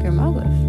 Grma agaibh.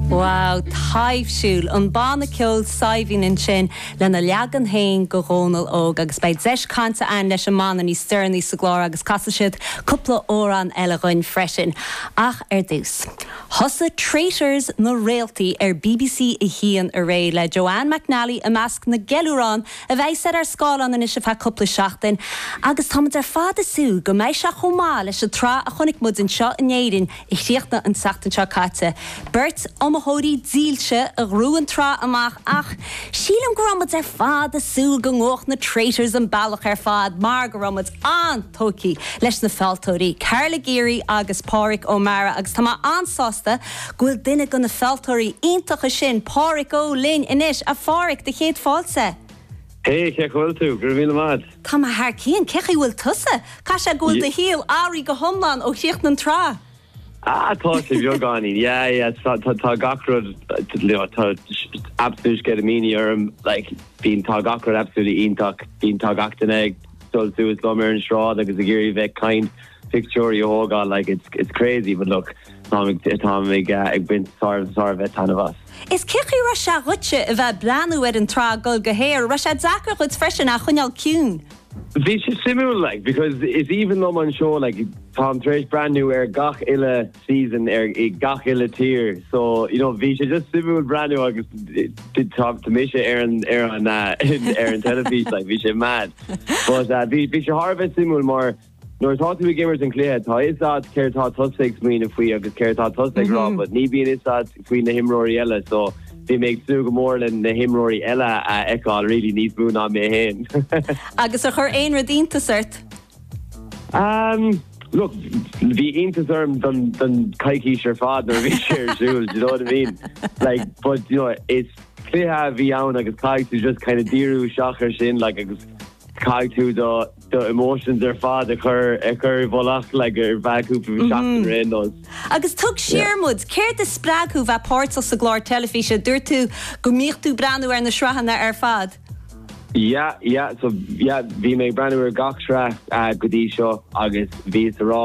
Wow, taibhsiúil! An banna ceoil Saidhbhín ansin lena leagan féin de Dhónall Óg agus beidh deis cainte ann leis an mbanna níos deireanaí sa gclár agus casfaidh siad cúpla amhrán eile dhuinn freisin. Ach ar dtús. Thosaigh Traitors na Réaltaí ar BBC 1 aréir le Joanne McNally i measc na gceiliúrán a bheas ar ár scáileáin anois ar feadh cúpla seachtain agus táimid ar fad ag súil go mbeidh sé chomh maith leis an tsraith a chonaic muid anseo in Éirinn a chríochnaigh an tseachtain seo caite. Beirt iomaitheoirí dílse a ghnóthaigh an tsraith amach ach sílim go raibh muid ar fad ag súil go ngabhfadh na Traitors an bealach ar fad mar go raibh an-tógtha leis na fealltóirí, Carla Geary agus Páraic Ó Meára, agus tá mé an-sásta go bhfuil duine de na fealltóirí iontacha sin, Páraic Ó, linn anois. A Pháraic, do chéad fáilte! Hé, cén chaoi a bhfuil tú? Go raibh maith agat. Tá mé thar cionn, cén chaoi a bhfuil tusa? Caithfidh sé go bhfuil do shaol athraithe go hiomlán ó chríochnaigh an tsraith. Ah, tá sé bheagáinín, yeah, yeah, tá- tá- tá gach rud, you know, tá s- absolute sceitimíní orm, like, bíonn- tá gach rud absolutely iontach, bíonn- tá gach duine ag dul suas liom ar an sráid agus ag iarraidh bheith ag caint, pictiúirí a thógáil, like, it's- it's crazy, but look, táim ag- táim ag, uh, ag baint thar- thar a bheith taitneamh as. 'S cén chaoi a raibh sé dhuitse a bheith ag breathnú ar an tsraith ag dul go haer, raibh sé deacair dhuit freisin coinneáil ciúin? Bhí sé suimiúil like because it's even though mo sheó like táim tar éis breathnú ar gach uile season i ngach uile tír so you know bhí sé just suimiúil breathnú agus tá tá mise ar an ar an ar an teilifís like bhí sé mad but bhí bhí sé thar a bheith suimiúil mar Nuair atá tú ag imirt an chluiche, tá 'fhios a'd céard atá tusa ag smaoineamh faoi agus céard atá tusa ag rá, but ní bhíonn 'fhios a'd faoi na himreoirí eile, so bhí mé ag súil go mór le na himreoirí eile a fheiceáil, really, níos mó ná mé féin. Agus ar chuir aon rud iontas ort? Umm, look, bhí iontas orm don, don coicís ar fad nuair a bhí sé ar siúl, do you know what I mean? Like, but, you know, is cluiche a bhí ann agus caithfidh tú just kind of díriú isteach air sin, like, agus caithfidh tú do, do emotions ar fad a chur a chur i bhfolach like ar feadh cúpla seachtain ar aon nós. Agus tug siar muid, céard a spreag thú a bheith páirteach sa gclár teilifíse? Dúirt tú go mbíodh tú ag breathnú ar na sraitheanna ar fad. Yeah yeah so yeah bhí mé ag breathnú ar gach sraith go dtí seo agus bhíos ag rá,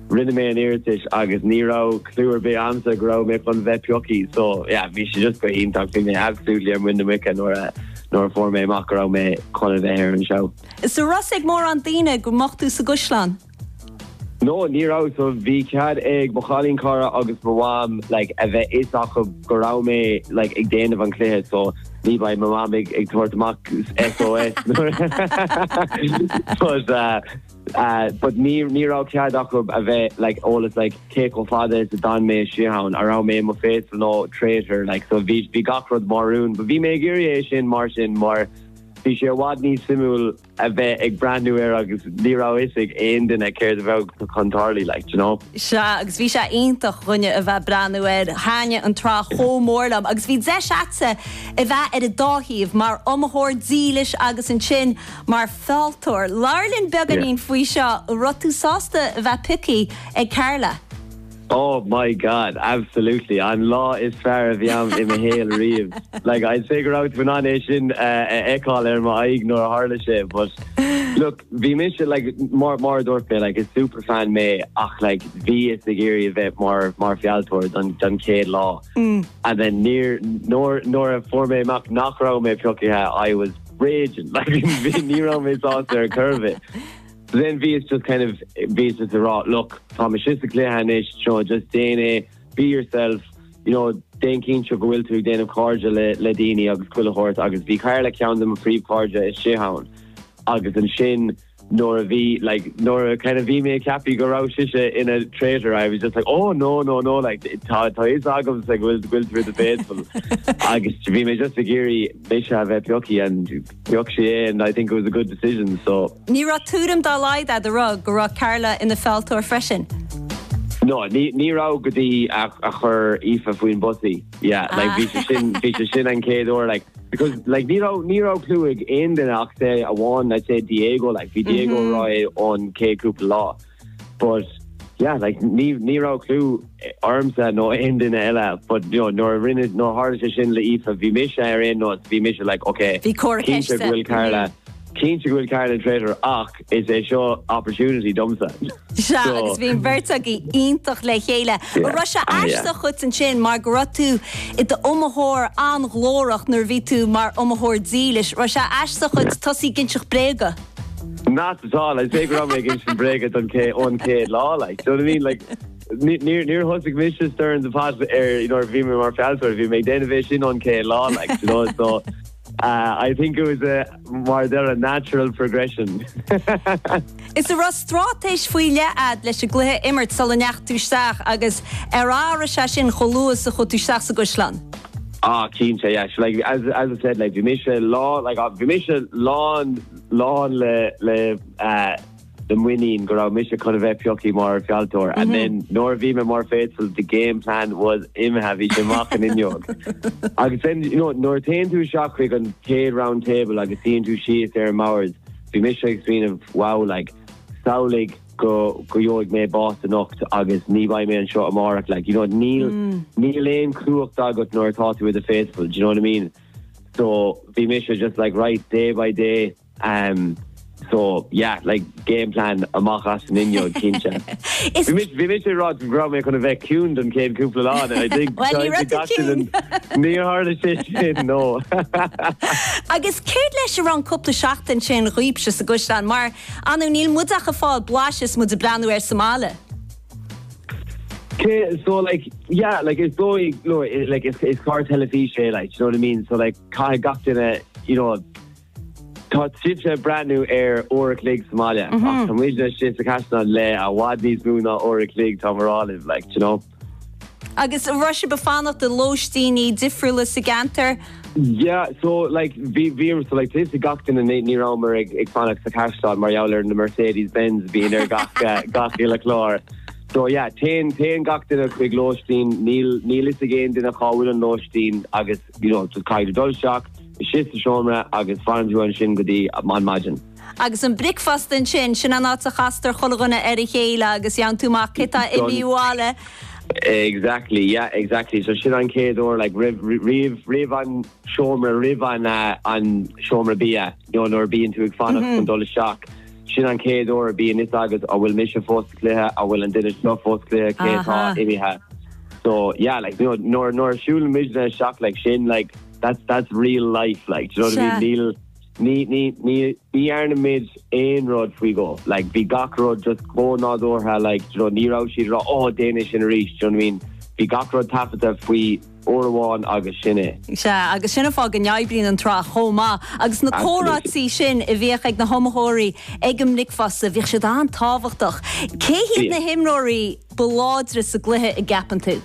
Rinne mé an iarratais agus ní raibh clue ar bith a'msa go raibh mé chun bheith pioctha so yeah bhí sé just go hiontach, bhí mé absolutely ar muin na muice nuair a, nuair a fuair mé amach go raibh mé chun a bheith ar an seó. Agus an raibh a fhios ag mórán daoine go mbeadh tú sa gcaisleán? No, ní raibh so bhí cead ag mo chailínchara agus mo mham like a bheith 'fhios acu go raibh mé like ag déanamh an chluiche so ní bheidh mo mham ag ag tabhairt amach SOS but uh, but ní ní raibh cead acu a bheith like eolas like cé chomh fada is a d'fhan mé istigh ann, a raibh mé i mo faithful nó traitor like so bhí bhí gach rud mar rún but bhí mé ag iarraidh é sin mar sin mar bhí sé i bhfad níos suimiúil a bheith ag breathnú air agus ní raibh fhios ag aon duine céard a bheadh chun tarlú like do you know. Sea agus bhí sé iontach dhúinne a bheith breathnú air, thaitin an tsraith chomh mór liom agus bhí deis agatsa a bheith ar an dá thaobh mar iomaitheoir dílis agus ansin mar fealltóir. Labhair linn beagáinín faoi seo. An raibh tú sásta bheith piocaithe ag Carla? Oh my God, absolutely! An lá is fearr a bhí agam i mo shaol riamh. Like, I'd say go raibh tú in ann é sin a fheiceáil ar m'aghaidh nuair a tharla sé. But, look, bhí mise, like, mar, mar a dúirt mé, like, is superfan mé ach, like, bhíos ag iarraidh a bheith mar, mar fealltóir don, don chéad lá. And then níor, nuair, nuair a fuair mé amach nach raibh mé piocaithe, I was. raging. Like ní raibh mé sásta ar cor ar bith. So then bhíos just kind of, bhíos just ag rá, look, tá mise sa chluiche anois, you know, just déan é, be yourself, you know, déan cinnte go bhfuil tú ag déanamh cairde le le daoine agus chuile shórt agus bhí Carla ceann de mo phríomhchairde istigh ann. Agus ansin, nuair a bhí, like, nuair a kind of bhí mé ag ceapadh go raibh sise ina traitor, I was just like, oh, no, no, no, like, tá a fhios agamsa go bhfuil, go bhfuil tú i do faithful. Agus bhí mé just ag iarraidh mise a bheith piocaithe and pioc sí mé and I think it was a good decision, so. Ní raibh tuairim dá laghad agat a rá go raibh Carla ina fealltóir freisin? No, ní, ní raibh go dtí a, a chuir Aoife faoin bus í. Yeah, like bhí sé sin, bhí sé sin an chéad uair, like, because, like, ní raibh, ní raibh clue ag aon duine ach amháin, let's say, Diego, like, bhí Diego mm -hmm. ag rá é ón chéad cúpla lá. But, yeah, like, ní, ní raibh clue ormsa nó aon duine eile, but, you know, nuair a rinne, nuair tharla sé sin le Aoife, bhí mise ar aon nós, bhí mise, like, okay, Bhí cóir ceiste. Cinnte go bhfuil Carla, mm -hmm. cinnte go bhfuil Carla ina traitor, ach is é seo opportunity domsa. Sea, agus bhí an bheirt agaibh iontach le chéile. An raibh sé aisteach dhuit ansin mar go raibh tú i d'iomaitheoir an-ghlórach nuair a bhí tú mar iomaitheoir dílis? Raibh sé aisteach dhuit tosaí ag inseacht bréaga? Not at all, I'd say go raibh mé ag insint bréaga ón chéad lá, like, do you know what I mean? Like, níor, níor thosaigh mise stirring the pot ar, you know, nuair a bhí mé mar fealltóir, bhí mé ag déanamh é sin ón chéad lá, like, do you know, so. I think it was a, mar a deir, a natural progression. Is a raibh straitéis faoi leith agat leis an gcluiche a imirt sula ndeachaigh tú isteach agus ar athraigh sé sin chomh luath is a chuaigh tú isteach sa gcaisleán? Ah, cinnte, yeah. So, like, as, as I said, like, bhí mise lán, like, bhí mise lán, lán le, le uh, na muinín go raibh mise chun a bheith pioctha mar fealltóir and then nuair a bhí mé mar faithful the game plan was imithe, bhí sé amach an fhuinneog. Agus then you know nuair a téann tú isteach chuig an chéad round table agus suíonn tú síos ag an mbord bhí mise ag smaoineamh wow like samhlaigh go go gheobhaidh mé bás anocht agus ní bheidh mé anseo amárach like you know níl níl aon chumhacht agat nuair atá tú i do faithful do you know what I mean? So bhí mise just like right day by day Ehm so yeah like game plan amach as an fhuinneog cinnte. Is. Bhí mise ag rá go raibh mé chun a bheith ciúin don chéad cúpla lá de I think. Bhuel ní raibh tú ciúin. Ní tharla sé sin no. Agus céard leis a raibh an cúpla seachtain sin dhaoibhse sa gcaisleán mar ar ndóigh níl muid ach ag fáil blais is muid ag breathnú air sa mbaile. Cé so like yeah like is dóigh no like is is clár teilifíse é like do you know what I mean so like caithfidh gach duine you know Tá sibhse ag breathnú ar uair a chloig sa mbaile ach tá muidne sa Chaisleán le i bhfad níos mó ná uair a chloig tá muid ar fáil like do you know. Agus raibh sibh ag fanacht i lóistíní difriúla sa gceantar? Yeah so like bhí bhí so like taobh istigh gach duine ní ní rabhamar ag ag fanacht sa Chaisleán mar gheall ar na Mercedes Benz a bhíonn ar gach gach uile clár so yeah téann téann gach duine chuig lóistín níl níl fhios ag aon duine cá bhfuil an lóistín agus you know, just caithfidh tú dul isteach, isteach sa seomra agus fanann tú ansin go dtí an maidin. Agus an bricfeast ansin, sin an áit a chastar chuile dhuine ar a chéile agus a fhaigheann tú amach cé atá imithe abhaile. Exactly, yeah, exactly. So sin an chéad uair, like, roimh, roimh, roimh an seomra, roimh an, an seomra bia, you know, nuair a bíonn tú ag fanacht chun dul isteach. Sin an chéad uair a bhíonn fhios agat an bhfuil mise fós sa chluiche, an bhfuil an duine seo fós sa chluiche, cé atá imithe. So, yeah, like, you know, nuair a siúlann muidne isteach, like, sin, like, that's, that's real life, like, do you know what I mean? Ní, ní, ní, ní dhearnamar aon rud faoi go, like, bhí gach rud just chomh nádúrtha, like, do you know, ní raibh siad ag rá, oh, déan é sin arís, do you know what I mean? Bhí gach rud taifeadta faoi Uair amháin agus sin é. Sea, agus sin an fáth go n-oibríonn an tsraith chomh maith. Agus na Absolutely. comhráití sin a bhíodh ag na hiomaitheoirí ag an mbricfeasta, bhíodh siad an-tábhachtach. Cé hiad na Bhíodh. himreoirí ba láidre sa gcluiche a gceapann tú?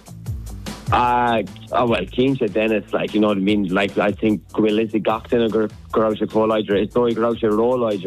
Ah, ah, bhuel, cinnte Dennis, like, you know what I mean, like, I think go bhfuil 'fhios ag gach duine go raibh sé chomh láidir. Is dóigh go raibh sé róláidir.